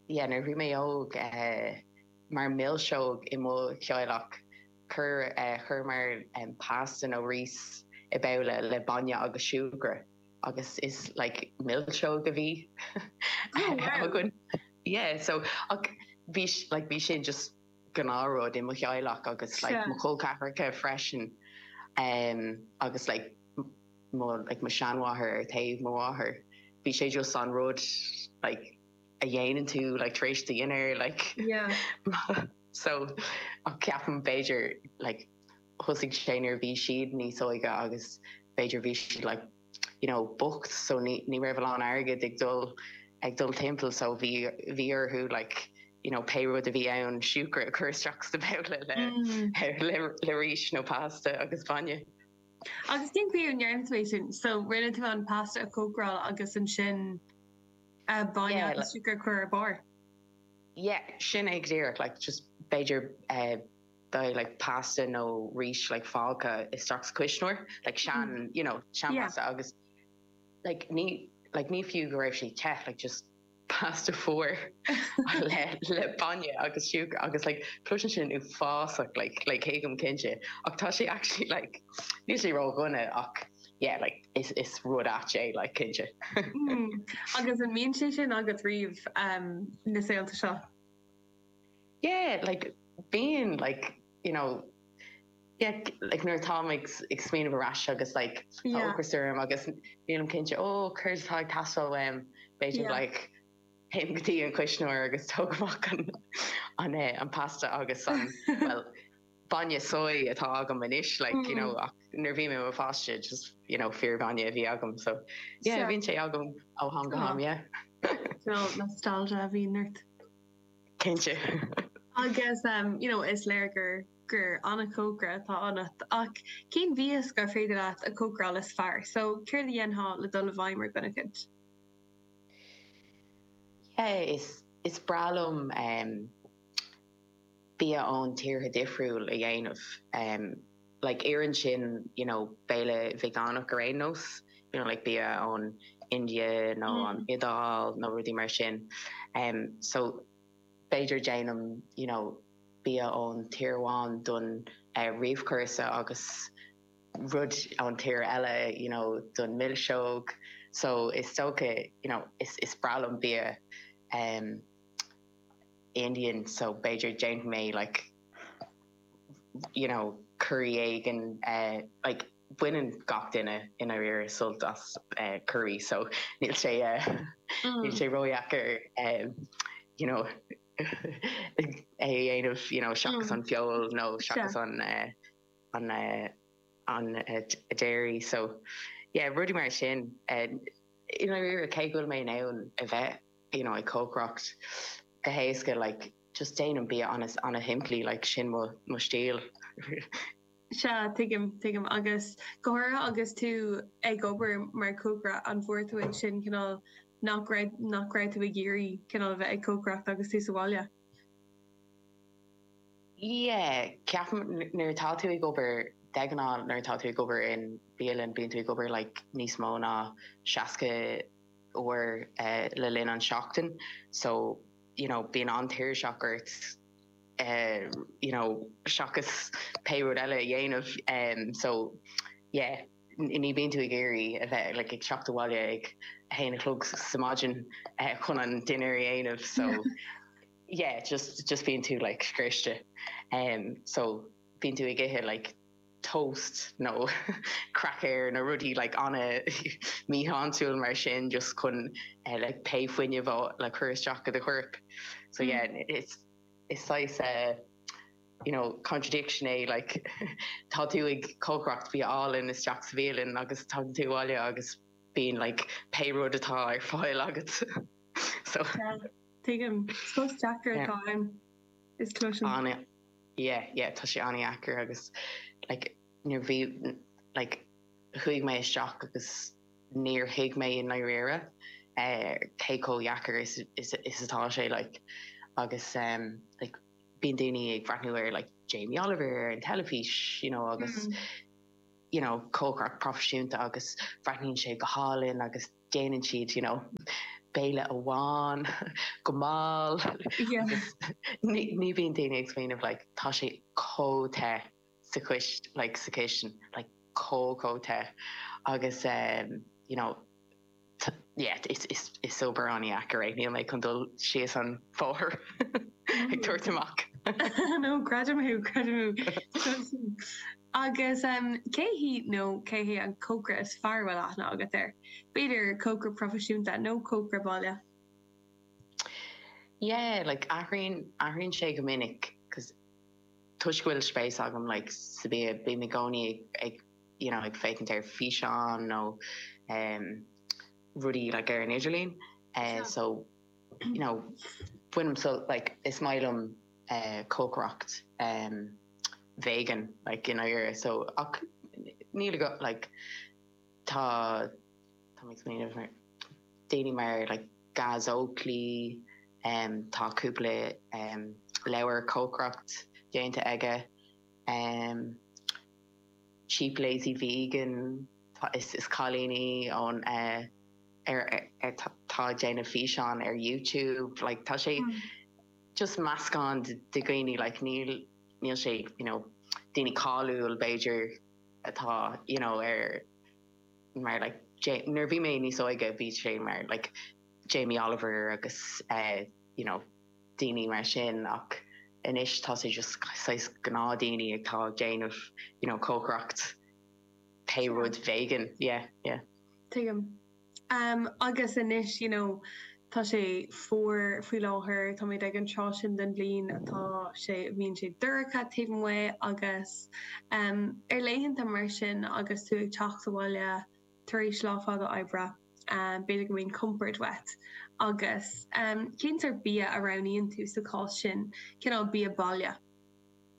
yeah nuair a bhí mé óg mar mhilseog i mo theaghlach chuir chuireamar pasta nó rís i babhla le bainne agus siúcra agus is like milseog a bhí againn yeah so ach bhí like bhí sin just gnáthrud i mo theaghlach agus like mo chol ceathracha freisin agus like mo, like, mo sheanmháthair ar taobh mo mháthar bhí sé just an rud like a dhéanann tú like tar éis do dhinnéir like yeah so ach ceapaim b'fhéidir like thosaigh sé nuair bhí siad níos óige agus b'fhéidir bhí siad like you know bocht so ní ní raibh a lán airgead ag dul ag dul timpeall so bhí bhí orthu like you know pé rud a bhí ann siúcra a cur isteach sa babhla le le le rís nó pasta agus bainne Agus cén chaoi a ndearna tú é sin? So rinne tú an pasta a chócaráil agus ansin bainne yeah, agus siúcra a chur ar bharr? Yeah, sin é díreach, like, just b'fhéidir dá mbeadh like, pasta nó rís like, fágtha istigh sa cuisneoir, like, mm-hmm. sean mm. you know, sean yeah. pasta agus like, ní like, ní fiú go raibh sé te like, just pasta fuar le le bainne agus siúcra agus like cloiseann sin uafásach like like céad faoin gcéad cinnte ach tá sé actually like níos sé rá gunna ach yeah like is is rud ait é like cinnte hmm. agus an mbíonn sé sin agat riamh um, na laethanta seo yeah like being like you know get like nuair atáim ag ag smaoineamh ar ais agus like tá Yeah. ocras orm agus nílim cinnte faoi céard atá ag teastáil uaim b'fhéidir Yeah. like théim go dtí an cuisneoir agus tógaim amach an an eh an pasta agus an bhuel bainne soy atá agam anois like you know Mm. ach nuair bhí mé i mo pháiste just you know fíorbhainne a bhí agam so yeah Sure. bhíonn sé agam ó ham go ham yeah. Bhfuil nostalgia a bhíonn ort? cinnte. Agus you know is léir gur gur an-chócaire atá ionat ach cén mhias gur féidir leat a chócaráil is fearr so céard a dhéanfá le dul i bhfeidhm ar dhuine eicínt? Yeah is is breá liom em bia ón tíortha difriúil a dhéanamh em. Like oireann sin you know béile veganach ar aon nós you know like bia ón India nó an Iodáil nó rudaí mar sin umm so b'fhéidir déanaim you know bia ón tír amháin don réamhchúrsa agus rud ón tír eile you know don mhilseog so is dócha you know is is breá liom bia umm Indian so b'fhéidir déanfaidh mé like you know, curaí éigin, like baineann gach duine i ndáiríre sult as curaí so níl sé níl sé ródheacair you know é a dhéanamh, you know, seachas an feoil nó seachas an an dairy so yeah rudaí mar sin. I ndáiríre cé go bhfuil mé in ann a bheith, you know, ag cócaireacht go héasca like, just déanaim bia ana-shimplí like sin mo stíl. Sea, tuigim, tuigim. Agus go háirithe agus tú ag obair mar chócaire, an bhfuair tú ansin cineál nach raibh, nach raibh tú ag iarraidh cineál a bheith ag cócaireacht agus tú sa bhaile? Yeah, ceapaim nuair atá tú ag obair, de ghnáth nuair atá tú ag obair in bialann, bíonn tú ag obair like níos mó ná seasca uair le linn an tseachtain so, you know, bíonn an-tuirseach ort you know, seachas pé rud eile a dhéanamh so yeah ní bhíonn tú ag iarraidh a bheith like ag teacht abhaile ag a haon a chlog sa maidin chun an dinnéar a dhéanamh so yeah just just bíonn tú like scriosta so bíonn tú ag ithe like toast nó crackers nó rudaí like an-mhíshláintiúil mar sin just chun like pé fuinneamh a like chur isteach go do chorp so yeah it's is saghas eh you know contradiction é like tá tú ag cócaireacht bia álainn isteach sa bhialann agus tagann tú abhaile agus bíonn like pé rud atá ar fáil agat so yeah tuigim post deacair atá ann is cloisim. yeah yeah tá sé an-deacair agus like nuair bhí like chuaigh mé isteach agus níor thuig mé i ndáiríre eh, cé chomh dheacair is is is atá sé like agus em like bíonn daoine ag breathnú ar like Jamie Oliver ar an teilifís you know agus you know cócaireacht proifisiúnta agus bhreathnaíonn sé go hálainn agus déanann siad you know béile amháin go mall agus ní bhíonn daoine ag smaoineamh like tá sé chomh te sa chis like sa chistin like chomh chomh te agus ehm you know ta yeah is is is obair an-deacair é níl mé chun dul síos an bhóthar ag tabhairt amach. I know, creidim thú, creidim thú. Agus cé hí nó cé hé an cócaire is fearr a bhfuil aithne agat air? B'fhéidir cócaire proifisiúnta nó cócaire baile? Yeah like athraíonn athraíonn sé go minic because toisc go bhfuil spéis agam like sa bia bím i gcónaí ag you know ag féachaint ar físeáin nó um rudaí like ar an idirlíon eh Sure. so you know bainim sult like is maith liom eh cócaireacht em vegan like in Éirinn so ach níl ag like tá tá mé ag smaoineamh ar daoine mar like Gaz Oakley em tá cúpla em leabhar cócaireacht déanta aige em cheap lazy vegan tá is is cailíní ón eh ar ar tá ag déanamh físeán ar YouTube like tá sé just meascán de dhaoine like níl níl sé you know daoine cáiliúil b'fhéidir atá you know ar mar like nuair a bhí mé níos óige bhí sé mar like Jamie Oliver agus eh you know daoine mar sin ach anois tá sé just saghas gnáth daoine atá ag déanamh you know cócaireacht pé rud vegan yeah yeah. Tuigim. Agus anois, you know, tá sé fuar faoi láthair, táimid ag an tráth sin den bhliain atá sé, a bhíonn sé dorcha taobh amuigh agus ar laethanta mar sin agus tú ag teacht abhaile tar éis lá fada oibre, b'fhéidir go mbíonn compord uait agus cén sórt bia a roghnaíonn tú sa chás sin, cineál bia baile?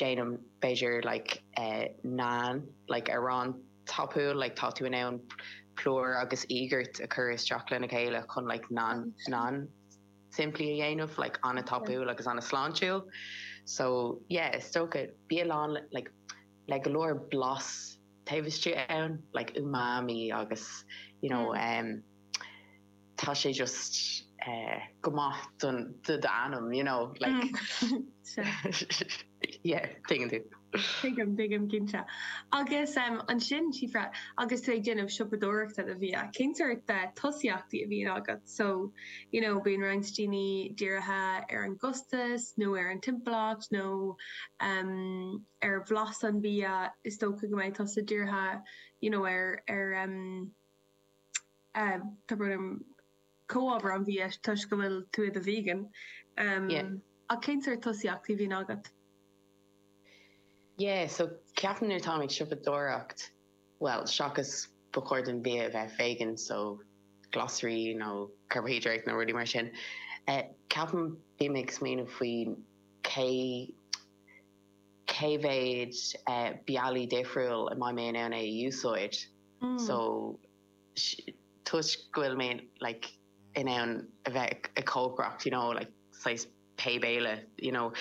déanaim b'fhéidir like naan like arán tapúil like tá tú in ann plúr agus iógart a chur isteach lena chéile chun like naan naan simplí a dhéanamh like an-na tapúil agus an-na sláintiúil so yeah is dócha bia lán like le go leor blas taobh istigh ann like umami agus you know em. tá sé just go maith do d'anam you know like yeah tá a fhios agat. Tuigim tuigim cinnte. Agus ansin Síofra agus tú ag déanamh siopadóireachta do bhia cén sort tosaíochtaí a bhíonn agat so you know bíonn roinnt daoine dírithe ar an gcostas nó ar an timpeallacht nó ar bhlas an bhia is dócha go mbeidh tusa dírithe you know ar ar yeah is dóigh liom comhábhair an bhia toisc go bhfuil tú i do vegan yeah ach cén sort tosaíochtaí a bhíonn agat? yeah so ceapaim nuair táim ag siopadóireacht bhuel seachas ba chóir don bhia a bheith vegan so glasraí nó carbaihiodráití nó rudaí mar sin eh ceapaim bím ag smaoineamh faoi cé cé mhéad eh bealaí difriúil an mbeidh mé in ann é a úsáid so toisc go bhfuil mé like in ann a bheith ag cócaireacht you know like saghas pé béile you know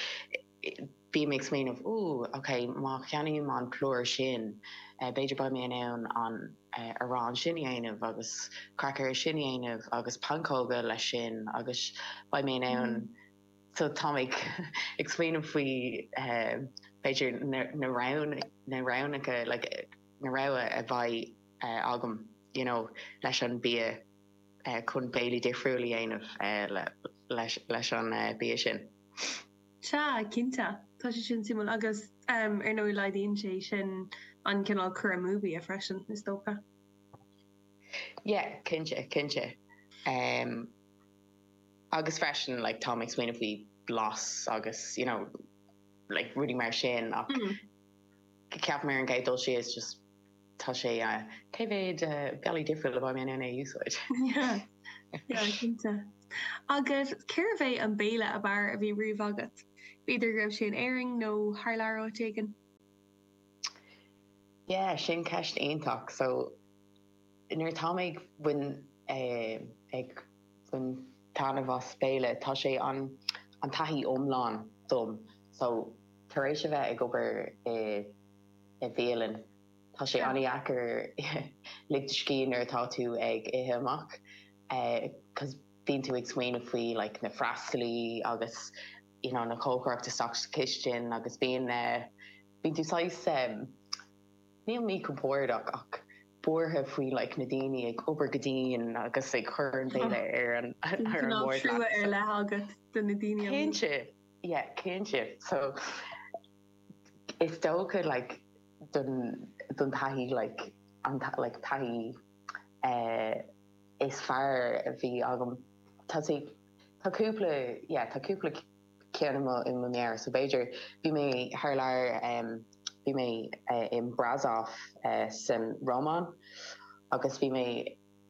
bím ag smaoineamh ooh ok má cheannaím an plúr sin b'fhéidir beidh mé in ann an arán sin a dhéanamh agus craicéir sin a dhéanamh agus pancóga leis sin agus beidh mé in ann so tá mé ag smaoineamh faoi b'fhéidir na na roghanna na roghnacha like na rogha a bheidh agam you know leis an bia chun béilí difriúil a dhéanamh leis an bia sin. Sea, cinnte, tá sé sin suimiúil agus em ar ndóigh laghdaíonn sé sin an cineál cur amú bia freisin is dócha. Yeah, cinnte, cinnte. Em agus freisin like táim ag smaoineamh faoi blas agus you know like rudaí mar sin ach ceapaim ar an gcéad dul síos just. Tá sé a. cé mhéad bealaí difriúil a beidh mé in ann a úsáid? Sea, cinnte. Agus cérbh é an béile ab fhearr a bhí riamh agat? B'fhéidir go raibh sé in Éirinn nó thar lear áit éigin? Yeah, sin ceist iontach. So, nuair atá mé ag bhain eh ag bain taitneamh as béile, tá sé an an taithí iomlán dom. So, tar éis a bheith ag obair i. i bhialann. Tá sé an-deacair lig do scíth nuair atá tú ag ithe amach 'cause bíonn tú ag smaoineamh faoi like na freastalaí agus you know na cócairí istigh sa chistin agus bíonn bíonn tú saghas níl míchompordach ach buartha faoi like na daoine ag obair go dian agus ag cur an béile ar an ar an mbord leat. Trua ar leith agat do na daoine. Cinnte, yeah cinnte so is dócha like don don taithí like an like taithí eh is fearr a bhí agam tá sí tá cúpla yeah tá cúpla ceann i mo i mo mheabhair so b'fhéidir bhí mé thar lear em bhí mé eh in Brașov eh san Rómáin agus bhí mé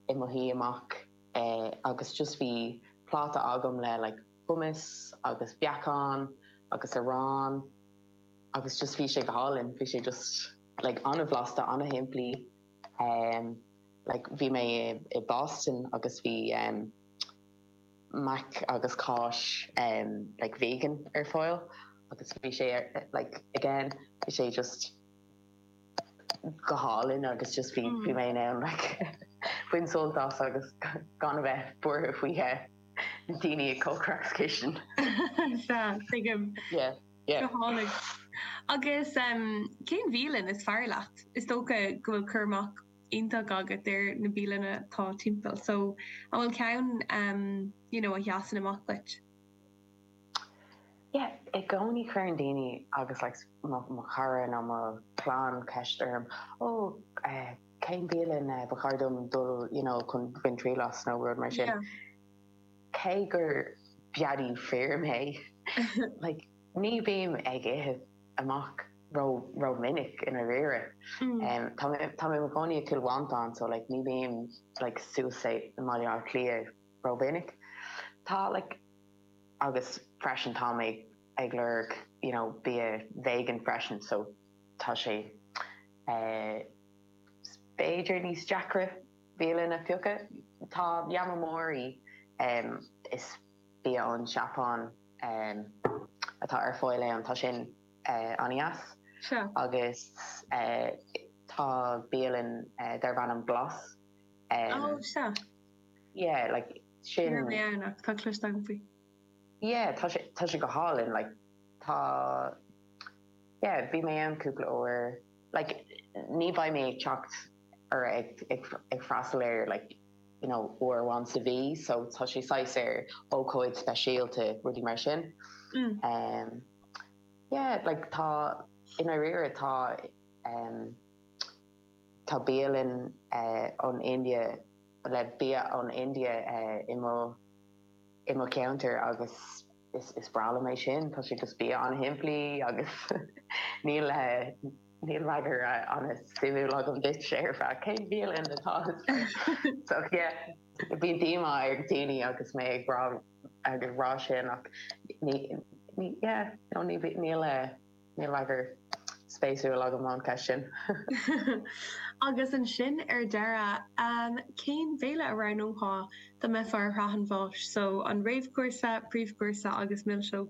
i mo shuí amach eh agus just bhí pláta agam le like hummus agus beacán agus arán agus just bhí sé go hálainn, bhí sé just like an-bhlasta, an-shimplí. Em like bhí mé i Boston agus bhí em mac agus cáis em like vegan ar fáil agus bhí sé ar like again bhí sé just, go hálainn agus just bhí bhí mé in ann like bain sult as agus gan a bheith buartha faoi na daoine ag comhrá sa chistin. Sea, tuigim. Yeah, yeah. Go hálainn. Agus em cén bhialann is fearr leat? Is dócha go bhfuil cur amach iontach agat ar na bialanna atá timpeall so an bhfuil ceann em you know a sheasann amach duit? Yeah, i gcónaí cuireann daoine agus like mo chara nó mo chlann ceist orm, oh cén bhialann ba chóir dom dul you know chun bain triail as nó rud mar sin. Cé gur beadaí mé like ní bím ag ithe amach rómhinic i ndáiríre. Tá mé i mo chónaí i Cill Mhantáin so like ní bím like suas i mBaile Átha Cliath rómhinic. Tá like agus freisin tá mé ag lorg you know bia vegan freisin so tá sé eh b'fhéidir níos deacra bialann a phiocadh. Tá Yamamori em is bia ón Seapáin em atá ar fáil ann tá sin eh an-deas Sure. agus eh tá bialann eh darb ainm Glas em Oh, sure. Yeah like sin. Ní raibh mé ann ach tá cloiste agam faoi. Yeah tá sé tá sé go hálainn like tá yeah bhí mé ann cúpla uair like ní bheidh mé ag teacht or ag ag ag freastal air like you know uair amháin sa mhí so tá sé saghas ar ócáid speisialta rudaí mar sin. Mm. Um yeah like tá i ndáiríre tá um Tá bialann ón India le bia ón India i mo cheantar agus is breá liom é sin. Tá sé just bia an-shimplí agus níl freagra an-suimiúil agam duitse ar feadh cén bialann atá so yeah. Bíonn díomá ar dhaoine agus mé ag rá sin ach ní yeah no níl. Níl freagar spéisúil agam an ceist sin. Agus ansin ar deireadh, cén béile a roghnófá dá mbeifeá ar shraith an bháis? So, an réamhchúrsa, príomhchúrsa agus milseog?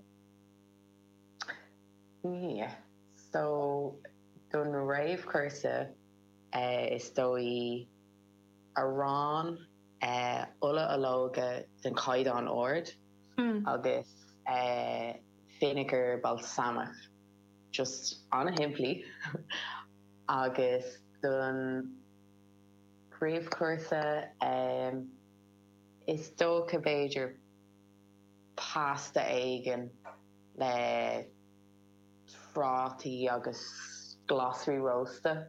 Yeah, so don réamhchúrsa is dóigh arán. Ola ológa den chaighdeán ard agus vinegar balsamic just an-shimplí agus don phríomhchúrsa is dócha b'fhéidir pasta éigin le prátaí agus glasraí rósta.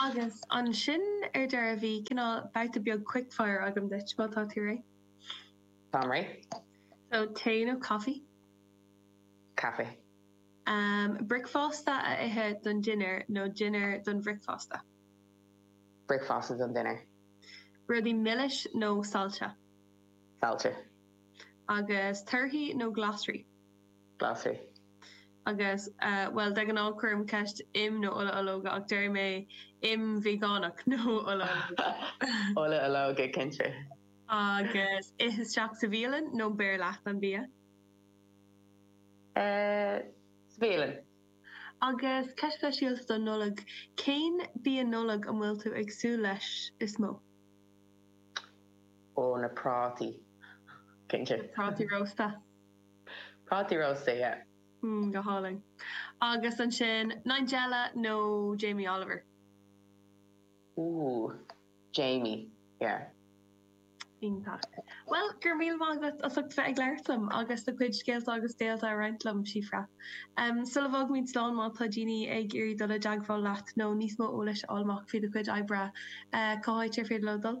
Agus ansin ar deireadh tá cineál babhta beag quick fire agam duit, má tá tú réidh. Táim réidh. So, tae nó caife? Caife. Bricfeasta a ithe don dinnéar nó dinnéar don bhricfeasta? Bricfeasta don dinnéar. Rudaí milis nó saillte? Saillte. Agus torthaí nó glasraí? Glasraí. Agus, bhuel, de ghnáth cuirim ceist im nó ola ológa ach déarfaidh mé im veigeánach nó ola ológa. Ola ológa, cinnte. Agus ith isteach sa bhialann nó beir leat an bia? Sa bhialann. Agus ceist speisialta don Nollaig, cén bia Nollag a bhfuil tú ag súil leis is mó? Ó, na prátaí, cinnte. Na prátaí rósta. Prátaí róstaithe. mm go hálainn. Agus ansin Nigella nó Jamie Oliver? Ooh. Jamie, yeah. Iontach. Bhuel, go raibh míle maith agat as ucht bheith ag labhairt liom agus do chuid scéalta agus béilí a roinnt liom, Síofra. Sula bhfágaimid slán, má tá daoine ag iarraidh dul i dteagmháil leat nó níos mó eolais a fháil amach faoi do chuid oibre, cá háit ar féidir leo dul?